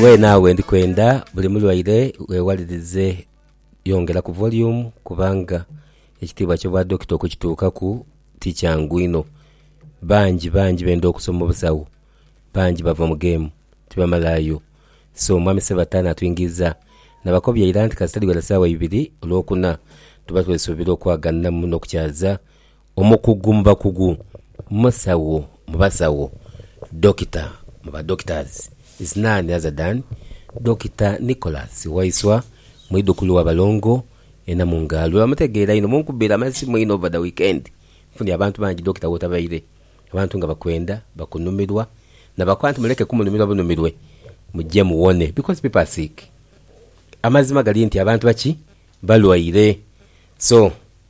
Weena we ndi kwenda buli mulwaire weewalirize yongera ku voliyumu kubanga ekitiibwa ky'obwa dokita okukituukaku ti kyangu inho. Bangi bangi benda okusoma obusawo, bangi bava mu geemu tibamalaayo. So Mwami Ssebatta naatwingiiza nabakobya ira nti kasita dhiwera saawa ibiri olwokuna tuba twesuubira okwaganiramu n'okukyaza Omukugu mu bakugu, musawo mu basawo, Dokita mu ba doctors is none other than Dokita Nicholas Waiswa, mwidhukulu wa Balongo e Namungaalo. Bwebamutegeera inho munkubira amasimu inho over the weekend. Nfunye abantu bangi Dokita wotabaire, abantu nga bakwenda, bakunumirwa nabakoba nti muleke kumunumirwa bunumirwe muje muwone because people are sick. Amazima gali nti abantu baki? Balwaire so.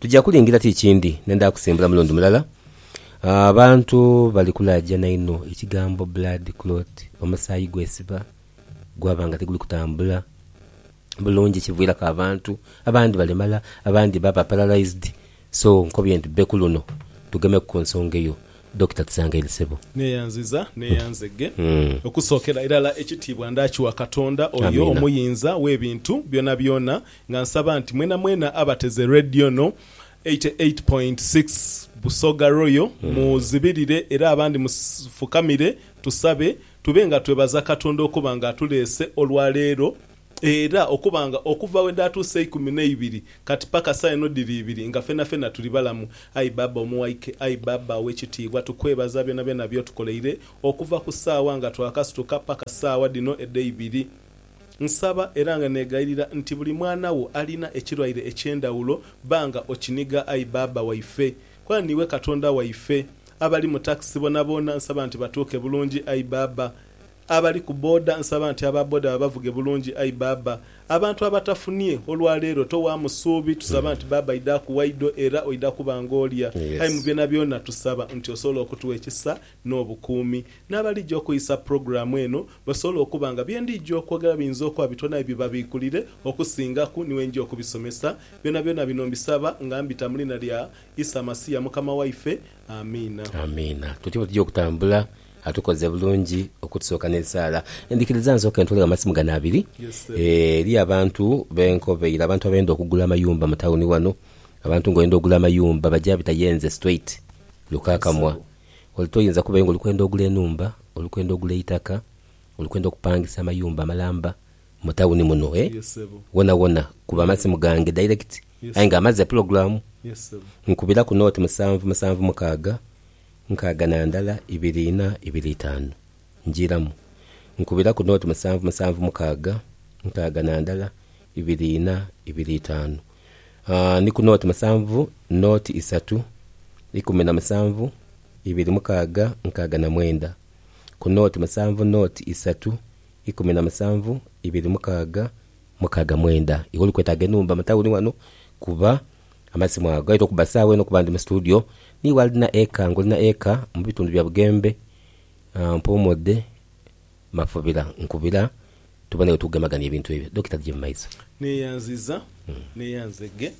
Tuja kulingira ti kindi nenda kusimbula mulundi mulala. Abantu bali kulaajana inho ekigambo blood clot, omusaayi gwesiba gwaba nga tiguli kutambula bulungi ekiviiraku abantu abandi balemala abandi baba paralysed so nkobye nti bbe kuluno tugemeku ku nsonga eyo Dokita Tusangaire Ssebo. Neeyanziza, neeyanzeghe. Okusookera irala ekitiibwa ndaakiwa Katonda, oyo Omuyinza w'ebintu byonabyona. Nga nsaba nti mwenamwena abateze Radio ono 88.6 Busoga Royal muzibirire era abandi mufukamire tusabe tube nga twebaza Katonda okuba nga atuleese olwa leero era okuba nga okuva we dhaatuusa eikumi n'eibiri kati paka saa eno dhiri ibiri nga fenafena tuli balamu. Ayi Baaba omuwaike, ayi Baaba ow'ekitiibwa tukwebaza byonabyona by'otukoleire okuva ku saawa nga twakasituka paka saawa dhino edheibiri. Nsaba era nga negayirira nti buli mwana wo alina ekirwaire eky'endhawulo bba nga okiniga ayi Bbaabba waife. Kona niiwe Katonda waife. Abali mu takisi boonaboona nsaba nti batuuke bulungi ayi Bbaabba. Abali ku boda nsaba nti aba boda babavuge bulungi ayi Bbaabba. Abantu abatafunie olwa leero towaamu suubi tusaba nti Bbaabba idhaaku waidho era oidha kuba ng'olya. Ayi mu byonabyona tusaba nti osobola okutugha ekisa n'obukuumi. N'abalija okwisa pulogulaamu eno basobole okuba nga bye ndija okwogera biyinza okuba bitwala aye bibabiikulire okusingaku ni wenja okubisomesa. Byonabyona bino mbisaba nga mbita mu liina lya Isa Masiya Mukama waife. Amiina. Amiina. Tutyo bwe tuja okutambula. Atukoze bulungi okutusooka n'esaala. Ndhikiriza nsooke ntwale amasimu gano abiri. Eriyo abantu be nkobeire, abantu abenda okugula amayumba mu tawuni ghano. Abantu ng'oyenda ogula amayumba baja bita yenze straight, Lukakamwa. Ole toyinza kubayo nga oli kwenda ogula enhumba, oli kwenda ogula eitaka, oli kwenda okupangisa amayumba amalamba mu tawuni muno eh? Wonawona kuba amasimu gange direct aye nga amaze pulogulamu. Nkubira ku nooti musanvu musanvu mukaaga nkaaga na ndala ibiri ina ibiri itaanu. Njiiramu. Nkubira ku nooti musanvu musanvu mukaaga nkaaga na ndala ibiri ina ibiri itaanu. ni ku nooti musanvu nooti isatu ikumi na musanvu ibiri mukaaga nkaaga na mwenda, ku nooti musanvu nooti isatu ikumi na musanvu ibiri mukaaga mukaaga mwenda. Iwe oli kwetaaga enhumba mu tawuni wano kuba amasimu ago gaidha okuba sawa eno kuba ndi mu situdiyo. Niiwe alina eka ng'olina eka mu bitundu bya Bugembe, mpoomodde. Mafubila, nkubila tube nawe tugemaganie ebintu ebyo. Dokita Jim Maiza. Neyanziza neyanze ge.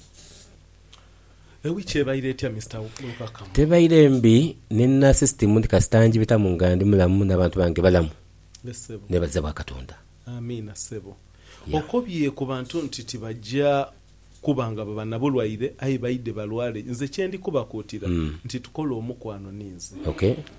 Ewiki ebaire etya Mister Lukaka? Tebaire mbi, nina system nti kasita njibitamu nga ndi mulamu nabantu bange balamu, nebaza bwa katonda. Amiina sebo. Okobye kubantu nti tibagya Kuba nga baba na bulwaire, aye baidhe balwale, nze kye ndi kubakuutira nti tukole omukwano ni nze.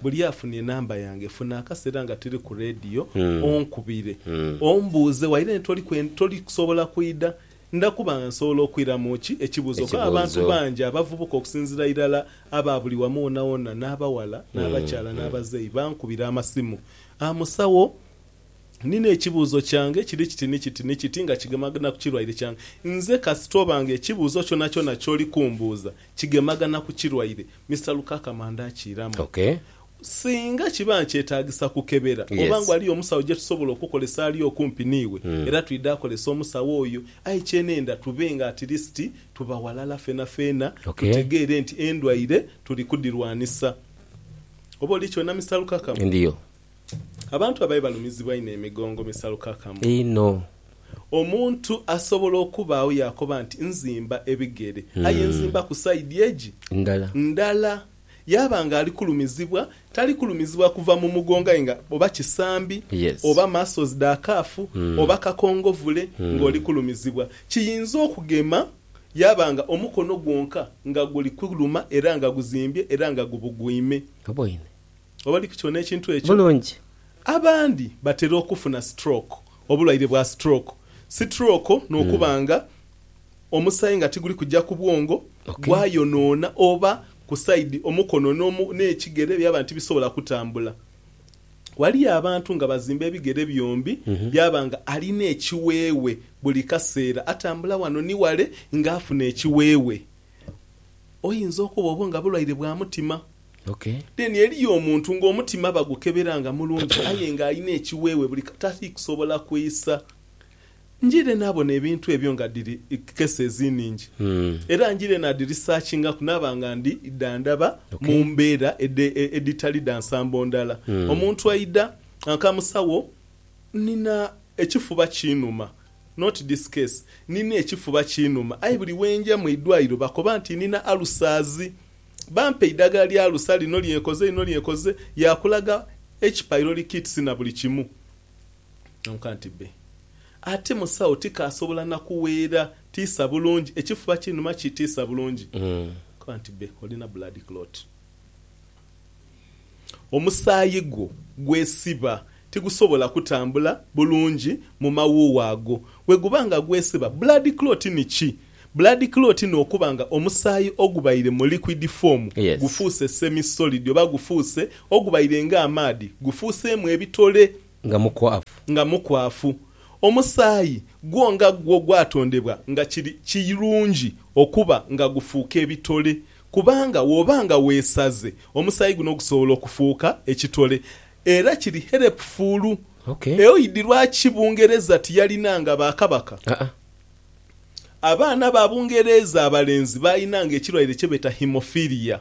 Buli afuna enamba yange, funa akaseera nga tuli ku leediyo onkubire ombuuze waire nti toli kusobola kwidha. Nda kuba nga nsobola okwiramu ki ekibuuzo kuba abantu bangi abavubuka okusinziira irala aba buli wamu wonawona n'abaghala n'abakyala n'abazeeyi bankubira amasimu, Aa musawo? Nina ekibuuzo kyange kiri kiti ni kiti ni kiti nga kigemagana ku kirwaire kyange. Nze kasita oba nga ekibuuzo kyonakyona ky'oli kumbuuza kigemagana ku kirwaire, Mister Lukaakama ndaakiiramu. Okay. Singa kiba nkyetaagisa kukebera, oba nga Yes. ghaliyo omusawo gye tusobola okukolesa ali okumpi n'iwe, Mm. era twidha akolesa omusawo oyo. Aye kye nenda tube nga at least tuba ghalala fenafeena Okay. tutegeere nti endwaire tuli kudhirwanisa. Oba oli kyona Mister Lukaakama? Ndiyo. Abantu ababi balumizibwa inho emigongo misalukakamu. Inho. Omuntu asobola okubaagho yaakoba nti, Nzimba ebigere, aye nzimbaku saidi egi. Ndala. Ndala. Yaaba ng'ali kulumizibwa, tali kulumizibwa kuva mu mugongo aye nga oba kisambi, Yes. oba muscles dha calf, oba kakongovule ng'oli kulumizibwa. Kiyinza okugema yaaba nga omukono gwonka nga guli kuluma era nga guzimbye era nga gubugwime. Oboine. oba li ku kyona ekintu ekyo bulungi. Abandi batera okufuna stroke, obulwaire bwa stroke, sitrooko n'okuba nga omusaayi nga tiguli kuja ku bwongo Okay. gwayonoona oba ku side omukono n'omu n'ekigere byaba nti tibisobola kutambula. Ghaliyo abantu nga bazimba ebigere byombi byaba nga alina ekiweewe buli kaseera atambula wano ni wale nga afuna ekiweewe. Oyinza okuba obo nga bulwaire bwa mutima. Okay. Then eriyo omuntu nga omutima bagukebera nga mulungi aye nga alina ekiwewe buli katali kusobola kwisa. Njire nabona ebintu ebyo nga dhiri cases ningi era njire nadhi researchingaku naba nga ndi dha ndhaba Okay. mumbera edhitali dha nsambo ndhala. Omuntu aidha akamusawo nina ekifuba kinuma not this case nina ekifuba kinuma aye buli wenja mwi dwaliro bakoba nti nina ulcers. Bampa eidagala lya alusa lino lye nkoze lino lye nkoze, yaakulaga eki pylori kits na buli kimu. Nonka nti bbe. Ate musawo tikaasobola na kuweera tiisa bulungi, ekifuba kinuma kitiisa bulungi. Nkoba nti bbe, olina blood clot. Omusaayi gwo gwesiba tigusobola kutambula bulungi mu mawuuwo ago. Bwe guba nga gwesiba, blood clot ni ki? Blood clot n'okuba nga omusaayi ogubaire mu liquid form Yes. gufuuse semi-solid oba gufuuse ogubaire nga amaadhi gufuuseemu ebitole. Nga mukwafu. Nga mukwafu. Omusaayi gwo nga gwo gwatondebwa nga kiri kirungi okuba nga gufuuka ebitole kubanga wooba nga weesaze omusaayi guno gusobola okufuuka ekitole era kiri helpful. Okay. Eoidhi lwaki Bungereza tiyalinanga ba Kabaka? Aa. Abaana ba Bungereeza abalenzi baalinanga ekirwaire kye beeta haemophilia.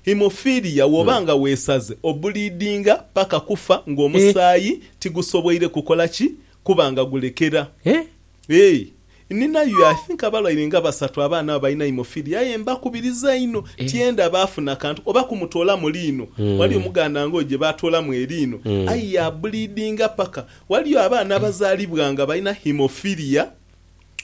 Haemophilia woba nga weesaze obuliidinga paka kufa ng'omusaayi tigusoboire kukola ki kuba nga gulekera. Eeh ninayo I think abalwaire nga basatu abaana abo balina haemophilia aye mbakubiriza inho tyenda baafuna kantu oba kumutoolamu liino. Waliyo omuganda ng'oyo gye baatoolamu eriino aye yaabuliidinga paka Ghaliyo abaana abazaalibwa nga balina haemophilia,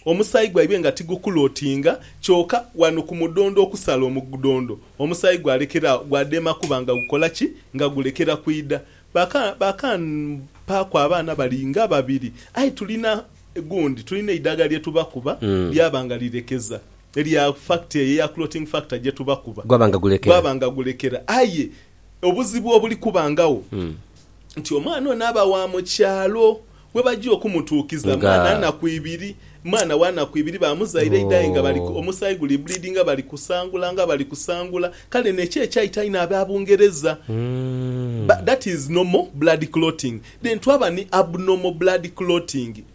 omusaayi gwaibwe nga tiguklotinga, kyoka ghano ku mudhondo okusala omugdhondo, omusaayi gwalekera agho, gwadema kuba nga gukola ki? Nga gulekera kwidha. Baka, bakampaaku abaana bali nga babiri, aye tulina gundi, tulina eidagala lye tubakuba lyaba nga lirekeza, erya factor eyo eya clotting factor gye tubakuba, Gwaba nga gulekera. gwaba nga gulekera. Aye Obuzibu obuli kubangagho nti omwana ono aba wa mu kyalo we baja okumutuukiza mwana naku ibiri, mwana wa naku ibiri bamuzaire eidha aye nga bali omusaayi guli bbulidinga bali kusangula nga bali kusangula. Kale nekyo ekyaita inho aba Bungereza. That is normal blood clotting. Then twaba ni abnormal blood clotting.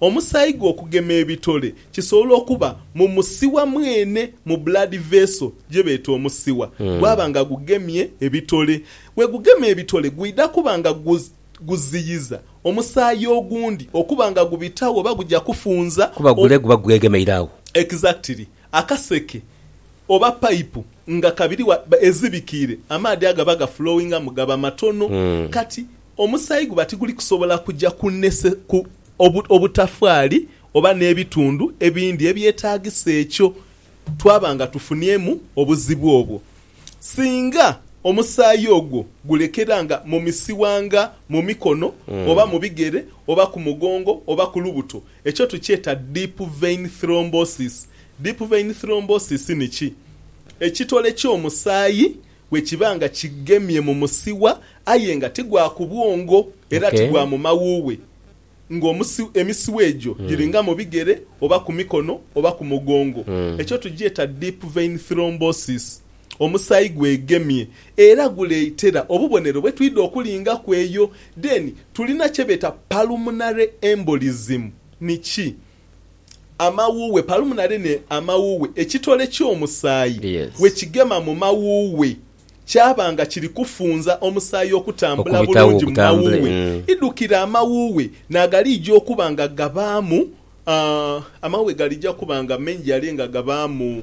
Omusaayi gwe okugema ebitole kisobola okuba mu musiwa mwene, mu blood vessel gye beeta omusiwa, gwaba nga gugemye ebitole. Bwe gugema ebitole gwidha kuba nga guziyiza omusaayi ogundi okuba nga gubitagho oba gugya kufunza. Kuba gule guba gwegemeire agho. Exactly. Akaseke oba pipe nga kabiri wa ezibikiire amaadhi agaba gaflowingamu gaba matono. Kati Omusaayi guba tiguli kusobola kuja kunese ku obu, obutafaali oba n'ebitundu ebindi ebyetaagisa ekyo, twaba nga tufuniemu obuzibu obwo. Singa omusaayi ogwo gulekera nga mu misiwa nga mu mikono oba mu bigere oba ku mugongo oba ku lubuto, ekyo tukyeta deep vein thrombosis. Deep vein thrombosis ni ki? Ekitole ky'omusaayi Bwe kiba nga kigemye mu musiwa aye nga ti gwa ku bwongo era ti gwa mu mawuuwe, nga emisiwa egyo giri nga mu bigere oba ku mikono oba ku mugongo, ekyo tugyeta deep vein thrombosis. Omusaayi gwegemye era guleetera obubonero bwe twidha okulingaku eyo. Then tulina kye beeta pulmonary embolism. Ni ki? amawuughe, palumnary, ne amawuughe, ekitole ky'omusaayi bwe kigema mu mawuughe kyaba nga kiri kufunza omusaayi okutambula bulungi mu mawuughe, idhukira amawuughe naagaliija okuba nga gabaamu, amawuughe galija kuba nga maingi ale nga gabaamu.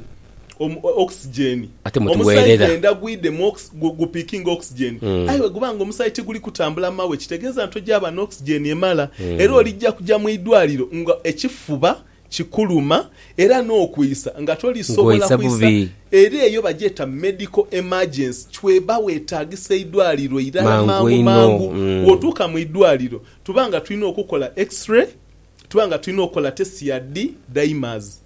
Oxygen. Ate mwe Omusai tuweerera. gwenda gwidemu ox gu gu pickinga oxygen. Aye bwe guba nga omusai tiguli kutambula mawe kitegeeza ntogyaba na oxygen emala era olijja kugya mu idwaliro nga ekifuba kikuluma era n'okwiisa nga tolisobola Ng'oisa kwisa bubi. era eyo bagyeta medical emergency chweba wetaagisa eidwaliro irala Mangu mangu einho. mangu. Mm. Bw'otuuka mu idwaliro tuba nga tulina okukukola X-ray, tuba nga tulina okukola test ya D dimers.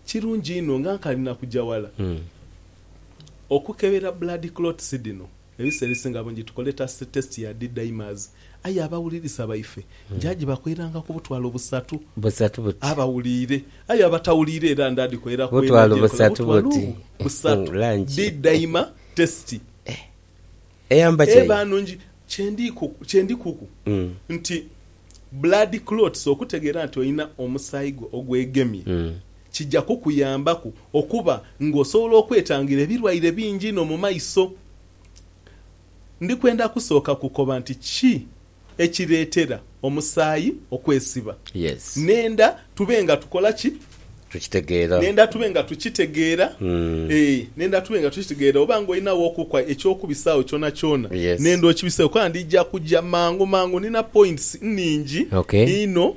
kirungi inho nga nkali na kuja wala okukebera blood clots dhino. Ebiseera ebisinga bungi tukole test ya D-dimers aye abawulirisa baife nja jibakoeranga ku butwalo busatu Busatu buti? abawuliire. Aye abatawuliire era nda dhikoera ku eno Butwalo gye nkola busatu butwalo buti? busatu Langi. D-dimer test. Eyamba ki eyo? Kye ndi kuku nti blood clots, okutegeera nti olina omusaayi gwo ogwegemye, kija kukuyambaku okuba ng'osobola okwetangira ebirwaire bingi inho mu maiso. Ndi kwenda kusooka kukoba nti ki ekireetera omusaayi okwesiba. Yes. Nenda tube nga tukola ki? Tukitegeera. Nenda tube nga tukitegeera. Ee, nenda tube nga tukitegeera. Oba nga olinagho okukwa eky'okubisagho kyonakyona, Yes. nenda okibiseegho kuba ndija kuja mangu mangu. Nina points nnhingi Okay. inho.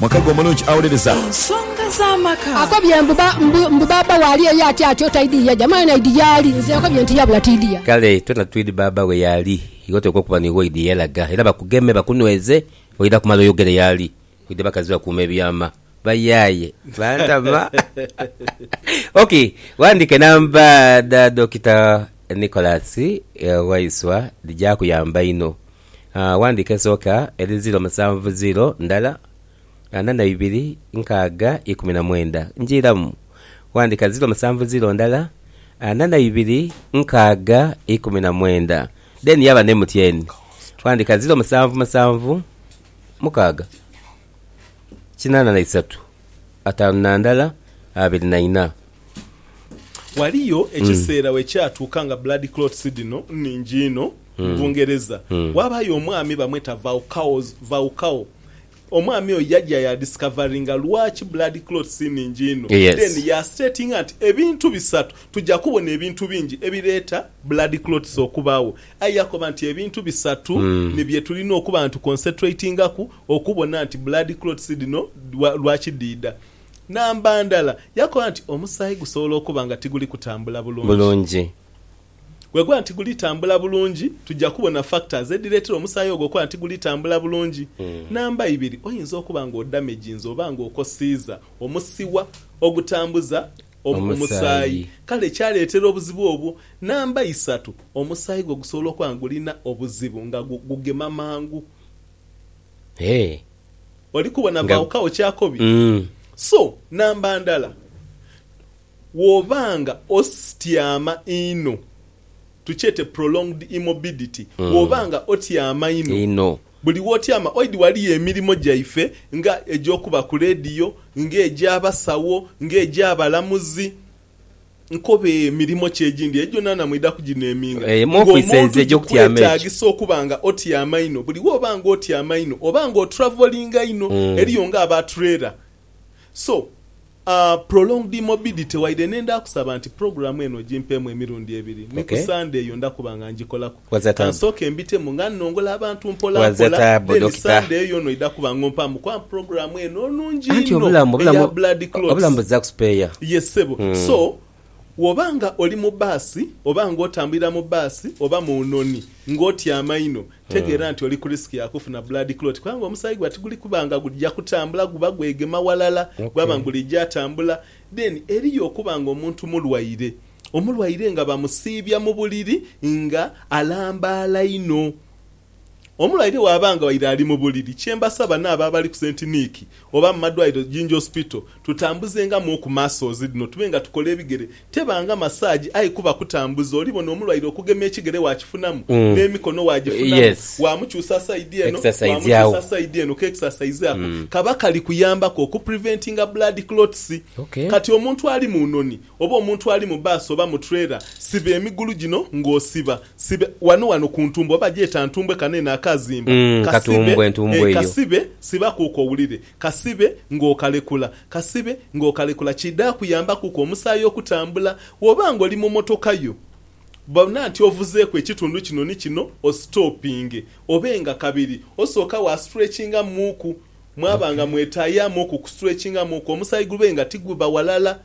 Mwaka gwo mulungi awolereza. Ensonga za maka. Akobye mbu ba, mbu, mbu baaba we ali eyo ati atyo, taidhi yaja. Mwana idi yaali? Nze nkobye nti yabula tiidhiya. Kale twena twidhi baaba we yaali. Iwe oteekwa okuba niiwe oidhi yelaga. Era bakugeme, bakunweze, oidha kumala oyogere yaali. Oidha bakazi bakuuma ebyama. Bayaye. Bantama. Ok, wandika enamba dha Dokita Nicholas Waiswa dhija kuyamba inho. Ghandika esooka eri ziiro musanvu ziiro ndala ana na ibiri nkaaga ikumi na mwenda. Njiiramu. Ghandika ziiro musanvu ziiro ndala ana na ibiri nkaaga ikumi na mwenda. Then yaba ne mutyeni. Ghandika ziiro musanvu musanvu mukaaga kinana na isatu. ataanu na ndala abiri na inha. Ghaliyo ekiseera we kyatuuka nga blood clots dhino nnhingi inho mu Bungereza. Ghabayo omwami bamweta Vaucau. Omwami oyo yaja ya discoveringa lwaki blood clots nnhingi inho. Then ya statinga nti ebintu bisatu, tuja kubona ebintu bingi ebireeta blood clots okubaagho. Aye yakoba nti ebintu bisatu ni bye tulina okuba nga tuconcentratingaku okubona nti blood clots dhino lwa kidhiidha. Namba ndala, yakoba nti omusaayi gusobola okuba nga tiguli kutambula bulungi. Bweguba nti tiguli tambula bulungi, tuja kubona factors edhireetera omusaayi ogwo okuba nti tiguli tambula bulungi. Namba ibiri, oyinza okuba nga odamaginze oba nga okosiiza omusiwa ogutambuza omusaayi, kale kyaleetera obuzibu obwo. Namba isatu, omusaayi gwo gusobola okuba nga gulina obuzibu nga gugema mangu Eeh Oli kubona nga baawukagho kyakobi. Umm. So, namba ndala, bw'oba nga ostyama inho, tukyete prolonged immorbidity, bw'oba nga otyama inho, Inho. buli w'otyama oidhi waliyo emirimo gyaife nga egy'okuba ku leediyo, nga egy'abasawo, nga egy'abalamuzi, nkobe mirimo ki egindi egyo naana mwidha kugineeminga? Emu okwisa ezo egy'okutyama egyo. Kikwetaagisa okuba nga otyama inho. Buli wooba nga otyama inho, oba nga otravolinga inho. Eriyo nga aba trailer. So, prolonged immobility, waire n'endha kusaba nti pulogulaamu eno ogimpeemu emirundi ebiri, ni ku Sande eyo ndha kuba nga ngikolaku. Kansooke mbitemu nga nnongola abantu mpolampola, then Sunday eyo yona oidha kuba nga ompaamu kwaamu program eno enungi inho eya Blood Clots. Yes ssebo. So, woba nga oli mu baasi, oba nga otambulira mu baasi, oba mu nhoni, nga otyama inho, tegeera nti oli ku risk ya kufuna Blood Clot kubanga omusaayi gwa tiguli kuba nga gudhja kutambula guba gwegema walala, gwaba nga gulija tambula. Then eriyo okuba nga omuntu mulwaire. Omulwaire nga bamusiibya mu buliri nga alambaala inho. Omulwaire bw'aba nga waire ali mu buliri, kye mbasaba n'abo abali ku St Nick oba mu madwaliro Jinja Hospital tutambuzengamu oku masozi dhino tube nga tukola ebigere. Teba nga masaagi aye kuba kutambuza. Olibona omulwaire okugema ekigere waakifunamu, n'emikono waagifunamu, waamukyusa sayidi eno waamukyusa sayidi eno. Ka exercise ako kaba kali kuyambaku oku preventinga blood clots. Kati omuntu ali mu noni Oba omuntu ali mu bbaasi oba mu trailer, siba emigulu gino ng'osiba sibe wano wano ku ntumbwe oba gyeta ntumbwe kano eno akaazimba kasibe ee kasibe sibakuuku owulire kasibe ng'okalekula kasibe ng'okalekula kidha kuyambakuku omusaayi okutambula Bw'oba ng'oli mu motoka yo bona nti ovuzeeku ekitundu kino ni kino ositoopinge obe nga kabiri osooka wa stretchingamuuku mwaba nga mwetaayaamuuku ku stretchingamuuku omusaayi gube nga tigubba walala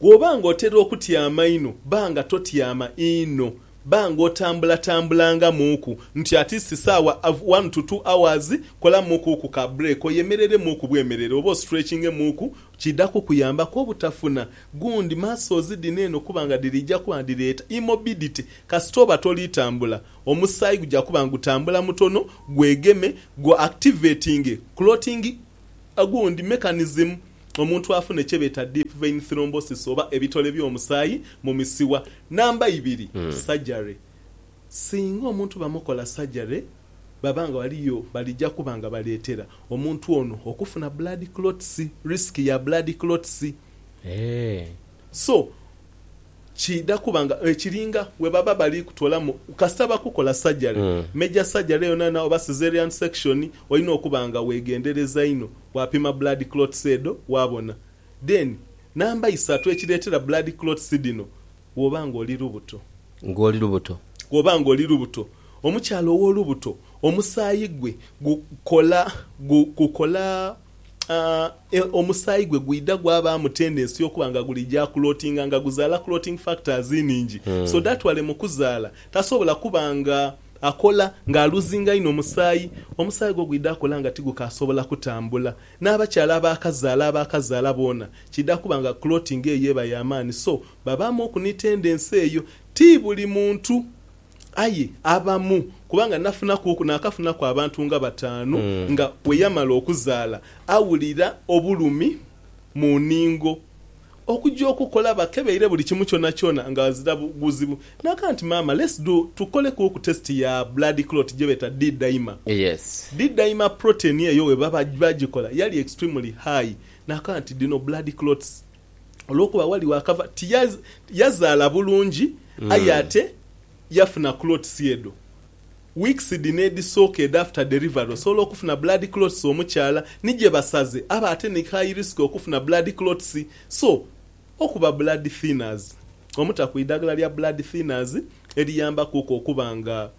Bw'oba ng'otera okutyama inho, ba nga totyama inho. Ba ng'otambulatambulangaamuuku nti at least saawa one to two hours. Kolamuukuuku ka break oyemereremuuku bwemerere oba ostretchingemuuku. Kiidha kukuyambaku obutafuna gundi muscles dhino eno kuba nga dhiriija kuba nga dhireeta immorbidity. Kasita oba toli tambula, omusaayi guja kuba nga gutambula mutono, gwegeme, gu activatinge clotting Ogundi mechanism omuntu afune kyebeeta deep vein thrombosis oba ebitole by'omusaayi mu misiwa. Namba ibiri, surgery. Singa omuntu bamukola surgery baba nga waliyo balija kuba nga baleetera omuntu ono okufuna blood clots, risk ya blood clots. So kiidha kuba nga ekiringa we baba bali kutoolamu kasita bakukola sajale, major surgery yonayona oba caesarean section, olina okuba nga weegendereza inho bwapima blood clots edho waabona. Then namba isatu ekireetera blood clots dhino bw'oba nga oli lubuto. Nga oli lubuto. Bw'oba nga oli lubuto. Omukyala ow'olubuto omusaayi gwe gukola, gukola. omusaayi gwe gwidha gwabaamu tendensi y'okuba nga guli ja kulotinga nga guzaala clotting factors nhingi. So that wale mu kuzaala tasobola kuba nga akola nga aluzinga inho musaayi. Omusaayi gwo gwidha akola nga tigukaasobola kutambula. N'abakyala abaakazaala abaakazaala boona kiidha kuba nga clotting eyo eba ya maani so babaamuku ni tendensi eyo. Ti buli muntu Aye abamu, kubanga nafunakuku naakafunaku abantu nga bataanu, nga bwe yamala okuzaala awulira obulumi mu nhingo. Okugya okukola bakebeire buli kimu kyonakyona nga ghazira buzibu. Naagamba nti, Maama, let's do, tukolekuuku test ya blood clot gye beeta D-dimer. D-dimer protein eyo bwe bagikola yali extremely high. Naakaba nti, Dhino blood clots. olwokuba wali wakava ti yazaala bulungi aye ate yafuna clots edho weeks dhino edhisooka edho after delivery osobola okufuna blood clots omukyala ni gyebasaze aba ate ni high risk okufuna blood clots so okuba blood thinners omutaku idhagala lya blood thinners eriyambakuku okuba nga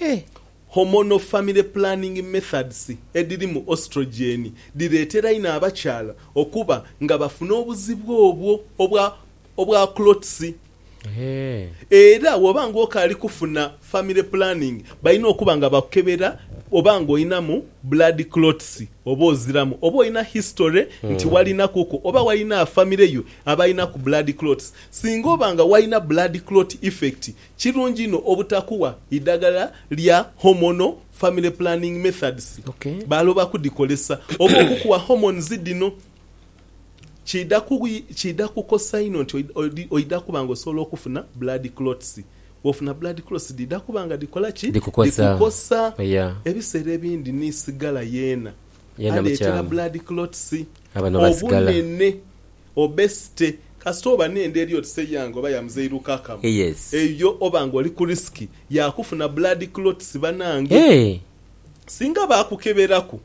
e. Hormonal family planning methods edhirimu oestrogen dhireetera inho abakyala okuba nga bafuna obuzibu obwo obwa obwa clots. Era bw'oba nga okaali kufuna family planning balina okuba nga bakukebera oba nga olinamu blood clots oba oziramu, oba olina history nti walinakuku oba walina famire yo abalinaku blood clots. Singa oba nga walina blood clot effect Kirungi inho obutakuwa idagala lya hormonal family planning methods baaloba kudikolesa oba okukuwa hormones dhino kiidha kukosa inho nti oidha kuba nga osobola okufuna blood clots. Bwofuna blood clots dhiidha kuba nga dhikola ki? Dhikukosa. Ebiseera ebindi ni sigala yeena aleetera blood clots obunene Obesity kasita oba n'enda eri oti se yange oba ya muzeiru kakamu Yes. eyo oba nga oli ku risk ya kufuna blood clots banange. Eeh. Singa baakukeberaku,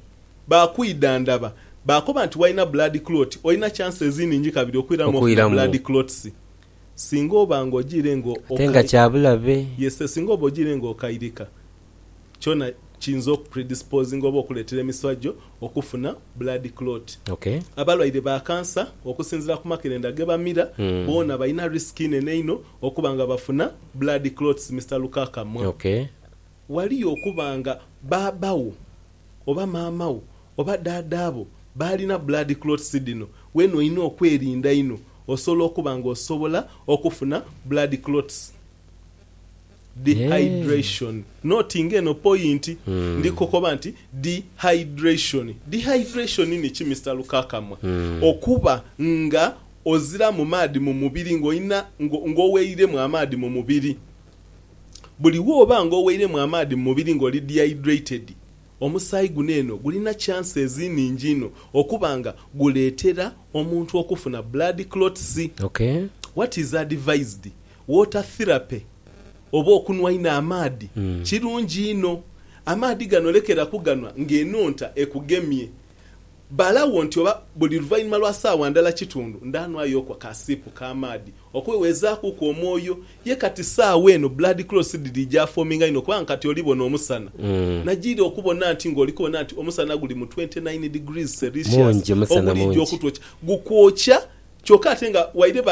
baakwidhandhaba, baakoba nti walina blood clot olina chances nhingi kabiri okwiramu ofuna Okwiramu. blood clots. Singa oba nga ojiire nga Ate nga okay. kya bulabe. Yes, singa oba ojiire nga okairika. kyona kiyinza oku predispozinga oba okuleetera emiswa gyo okufuna blood clot. Abalwaire ba kansa okusinziira ku makerenda ge bamira boona balina risk inene inho okuba nga bafuna blood clots, Mister Lukakamwa. Waliyo okuba nga baaba wo oba maama wo oba daada bo baalina blood clots dhino, weena olina okwerinda inho osobola okuba nga osobola okufuna blood clots. Dehydration. Note nga eno poyinti. Ndi kokoba nti dehydration. Dehydration ni ki Mister Lukakamwa? Okuba nga oziramu maadhi mu mubiri nga olina nga oweiremu amaadhi mu mubiri. Buli woba nga oweiremu amaadhi mu mubiri nga oli dehydrated, omusaayi guno eno gulina chances nhingi inho okuba nga guleetera omuntu okufuna blood clots. Okay. What is advised? Water therapy oba okunhwa inho amaadhi kirungi inho. Amaadhi gano lekera kuganhwa ng'enhonta ekugemye. Balagho nti oba buli luvainhuma lwa saawa ndala kitundu ndanhwayoku akasiipu ka maadhi okwewezaakuku omwoyo. Ye kati saawa eno blood clots dhiri gyafoominga inho kubanga kati oli bona omusana. Najiira okubona nti ng'oli kubona nti omusana guli mu twenty nine degrees Celsius oguli gy'okutwokya. Gukwokya kyoka ate nga waire ba.